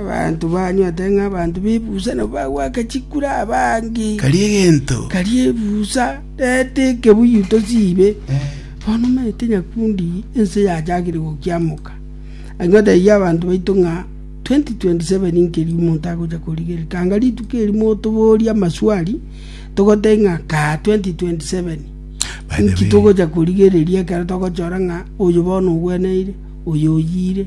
“Abanto banywete ng'a abanto b'ebusa nabo bagwaka chikura abange, karia ebusa nete ekebuyu tosiibe. Bono omanyete nyakundi ense yachakire gokiamoka, agio taiyo abanto baito ng'a 2027 nkeria omonto agocha korigerereka. Anga rituko erimo otoborie amaswali, togotebie ng'a kaa 2027, inki togocha korigereria ekero togochora ng'a oyo bono ogweneire, oyo oyiire.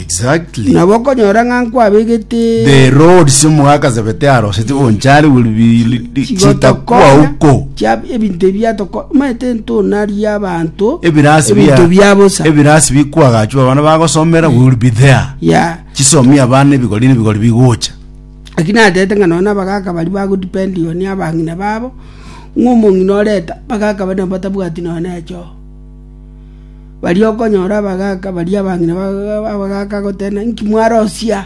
Exactly. Nabo okonyora ng'a nkwabegete The roads omogakasebete aroseti bonchari will be chitakuwa uko. chiab- ebinto ebi biatoko omanyete ntonaria abanto Ebirasi ebinto bia bosa ebirasi bikwagachwa abana bagosomera will be there. ya Chisomi abana ebigori nebigori bigocha. lakini atete ng'a nonya abagaka bari bagodependiwa ni abang'ina babo ng'a omong'ina oreta bagaka bari nabo batabwati nonya na echoo Baria okonyora abagaaka baria abang'ina abagaaka gotenena, Inki mwarosia?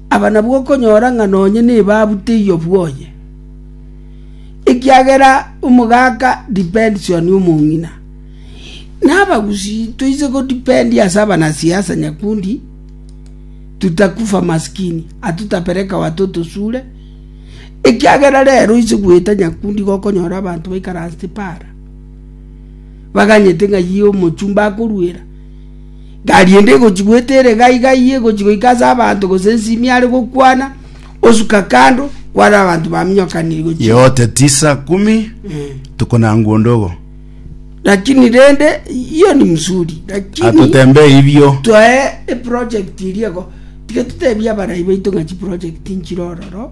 Aba nabwo okonyora ng'a nonye nigo abuteyie obwoye, ekiagera omogaaka depends on omong'ina. Na abagusii toise go depend ase abanasiasa nyakundi, tutakufa maskini, hatutapeleka watoto shule, ekiagera rero oise goeta nyakundi igo okonyora abanto baikaransete paara. baganyete ng'a yie omochumba akoruera. Gari ende egochi goeta ere gai gai egochi goika ase abanto gose nsimi are gokwana osuka kando kware abanto baminyokaniri gochi. Yote tisa kumi Eh. tuko na nguo ndogo Lakini rende hiyo ni mzuri. Lakini atotembee hivyo twae eproject iriego tiga tutebia abarai baito ng'a chiproject nchire ororo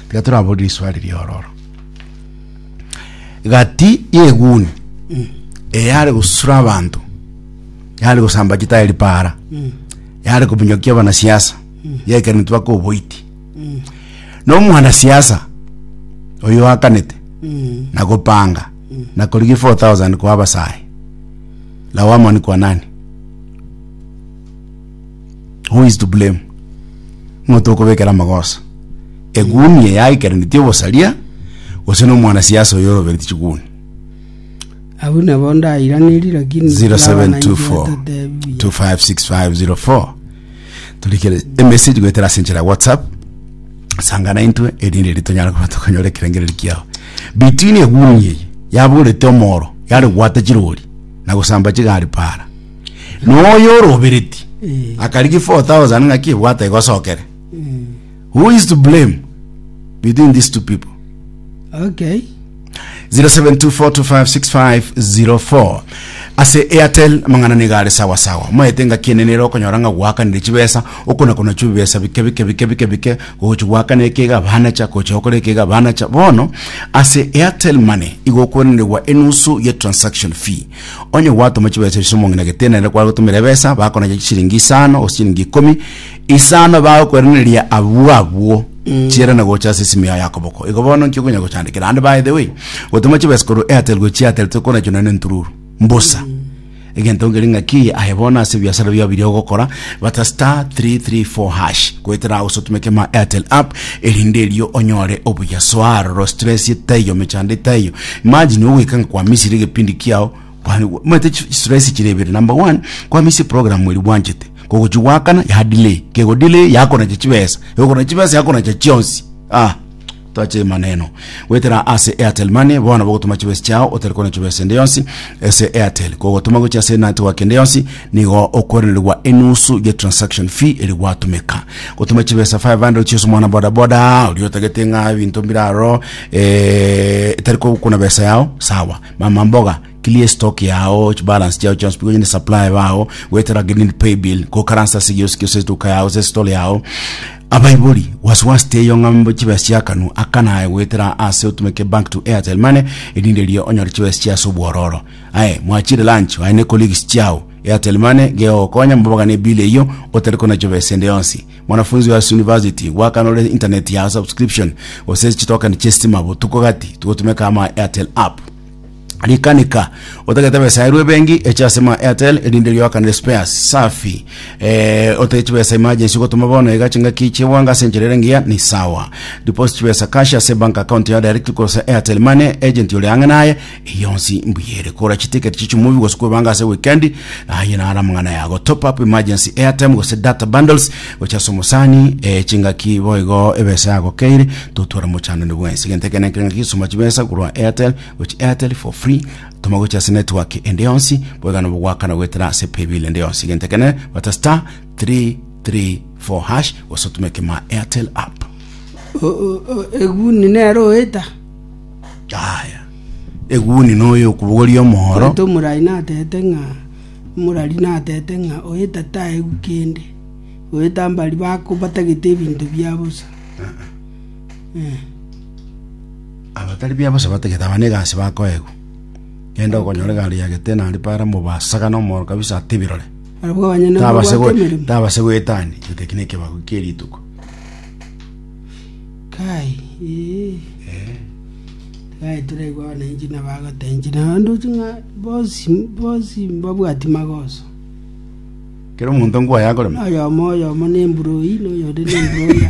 Tiga toraborie riswali ri'ororo. Gati y'eguni eyare gosura abanto yare gosamba chitayari para yare kominyokia abanasiasa yekereni tubaka oboiti nomwanasiasa oyo akanete na gopanga na korigia 4000 kwa abasae lawama ni kwa nani Who is to blame? Ng'o tokobekera amagoso? Eguni eye yaikeranetie obosaria gose nomwana siasa oyo orobereti chiguni? Abwo nabo ndairanerie lakini abananchi 0724 batatebia. 256504 turikere emessage goetera ase enchera ya whatsapp sangana intwe erinde eri tonyare kuba tokonyora ekerengereri kiao between eguni eye yaborete omoro yare gwata chirori na gosamba chigari para Noyo orobereti Eh. akarigia 4000 ng'aki ebwate egosokere. Mm. Who is to blame between these two people? Okay. 0724256504 ase airtel mang'ana niga are sawa sawa maete ngaki enene ero okonyora ng'a gwakanire chibesa okona kona chibesa bike bike bike bike bike gochi gwakana ekega banacha gocha okora ekega banacha bono ase airtel money igo okwenerwa enusu ye transaction fee Onye gwatoma chibesa ichio omong'ina gete nere kware gotumera ebesa bakonacha chisiringi isano gose chisiringi ikomi isano bagokwereneria abwo abwo chiera na gocha ase esimi yao y'akoboko igo bono nki okonya gochandekera ande by the way gotoma chibesa korwa airtel gochia airtel tokonacho naende ntururu mbosa egento nkeri ng'aki aye bono ase ebiasara biao biria ogokora bata star 334 hash goetera ao sotumeke ma airtel app erinde erio onyore obuya soa aroro stress etaiyo mechando etaiyo imagine ogwekanga kwa misiri egepindi kiao kwa- mwete chi- stress chire ibere number one kwa misi program eri bwanchete kogochi gwakana ya delay kego delay yakonacha chibesa ekonacha chibesa yakonacha chionsi ah Toache maneno. Gwetera ase Airtel Money bono bogotuma chibesi chao otari kona chibesi ende yonsi ase Airtel. Kogotuma gochia ase network ende yonsi nigo okwerenerwa enusu ye transaction fee eri gwatumeka. Gotuma chibesa 500 chia ase omwana boda boda oria otagete ng'a ebinto mbiraro eh, etari kogokuna besa yao sawa. Mama mboga Clear stock yao, balance chiao chionsi pi gonyene supply bao, goetera green pay bill, gokaransa ase gionsi gionsi etuka yao ase store yao. Abaibori, was was teiyo ng'a mbe chibesa chiakanu aka naye goetera ase otumeke bank to Airtel money erinde erio onyore chibesa chia ase obwororo. Aye, mwachire lunch aye ne colleagues chiao, Airtel money gegogokonya mobogane ebill eyio otari konachwa besa ende yonsi. Mwanafunzi oyo ase university, gwakana ore internet ya subscription gose chitoken chie stima botuko gati tigotumeka ama Airtel app. Rikanika otagete besa erwe bengi eche ase ma Airtel erinde rioakanere spare safi eh, otege chibesa emergency gotoma bono iga chingaki chigwanga ase enchera ere engiya ni sawa deposit chibesa cash ase bank account ya direct kosa Airtel money agent ore ang'e naye eyonsi mbuyere kora chiticket chichi movie gose kwebanga ase weekend aye nara mang'ana yago top up emergency airtime gose data bundles gocha ase omosani eh, chingaki boigo ebesa yago keire totwara mochanane bwensi genteke nenkere ngaki soma chibesa korwa Airtel gochia Airtel for free toma gochia ase network ende yonsi boigana bogwakana goetera ase paybill ende yonsi gento kene bata star 334 hash gose otume kema Airtel app eguni nero oeta aya eguni noyo okubogoria omoro oeta omorai natete ng'a omorari natete ng'a oeta taegu kende oeta mbari bako batagete ebinto bia bosa Eh. Abatari biabosa batagete abana egasi bakoegwa. Genda okonyore egari ya Getena aria Para mobasagane omoro kabisa atebirore. Barabwo abanyene Tabase gwe- babwate emeremo. tabase goetani gete eki nekebago kie rituko. Kai, ee. Kai toraigwe abananchi nabagotenchi na ndoche ng'a bonsi, bonsi mbabwati magoso. Kera omonto ngwaye akorema. Oyomo oyomo nemburoi, noyonde nemburoira.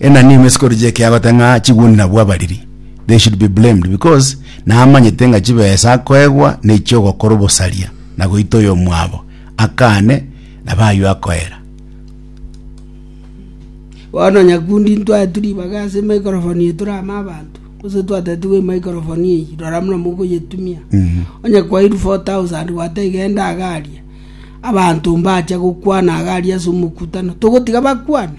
Enani ime sikori chi'ekeabate ng'a chigwendi nabwo abariri, they should be blamed, because namanyete ng'a chibesa akoegwa nechio ogokora obosaria na goita oyomwabo akane na baywo akoera. Bono nyakundi intwaetu ribaga ase emaikrofoni eye tore amo abanto, gose twatetigwe emaikrofoni eyio, rora buna mokoyetumia. Onye kwairwe 4,000 gwateba genda iga aria, abanto mbacha gokwana iga aria ase omokutano, togotiga bakwane?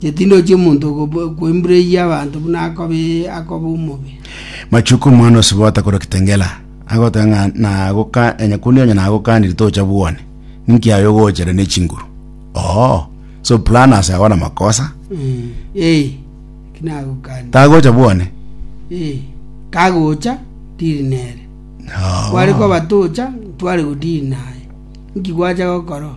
Chetindo chi'omonto koimbureria abanto buna akoba omobe. Machuko omwana osibota korwa Kitengela agoteba ng'a nagoka enyakundi onye nagokanire tocha bwone ninki aye ogochera ne chinguru oo so planners aba na makosa Mm. Eh, kinagokani. tagocha bwone Eh, kagocha ndiri nere. Oo. Kware koba tocha tware godiri naye. Nki gwacha gokoro?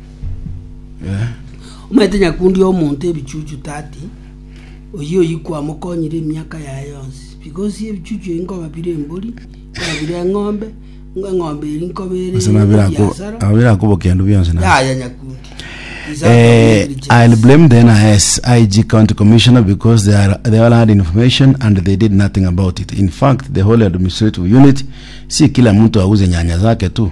Omanyete nyakundi omonto ebichuchu 30, oyio oyio kwamokonyire emiaka yaye yonsi, because ebichuchu ebi nkoba bire embori, nkoba bire eng'ombe, ng'a eng'ombe eri nkoba ere Ase nabera ako- ebiasara. abo bera akobokea ndo bionsi na Yaya nyakundi. Is out of Eh, negligence. I'll blame the NIS, IG County Commissioner because they are they all had information and they did nothing about it. In fact, the whole administrative unit, si kila mtu auze nyanya zake tu.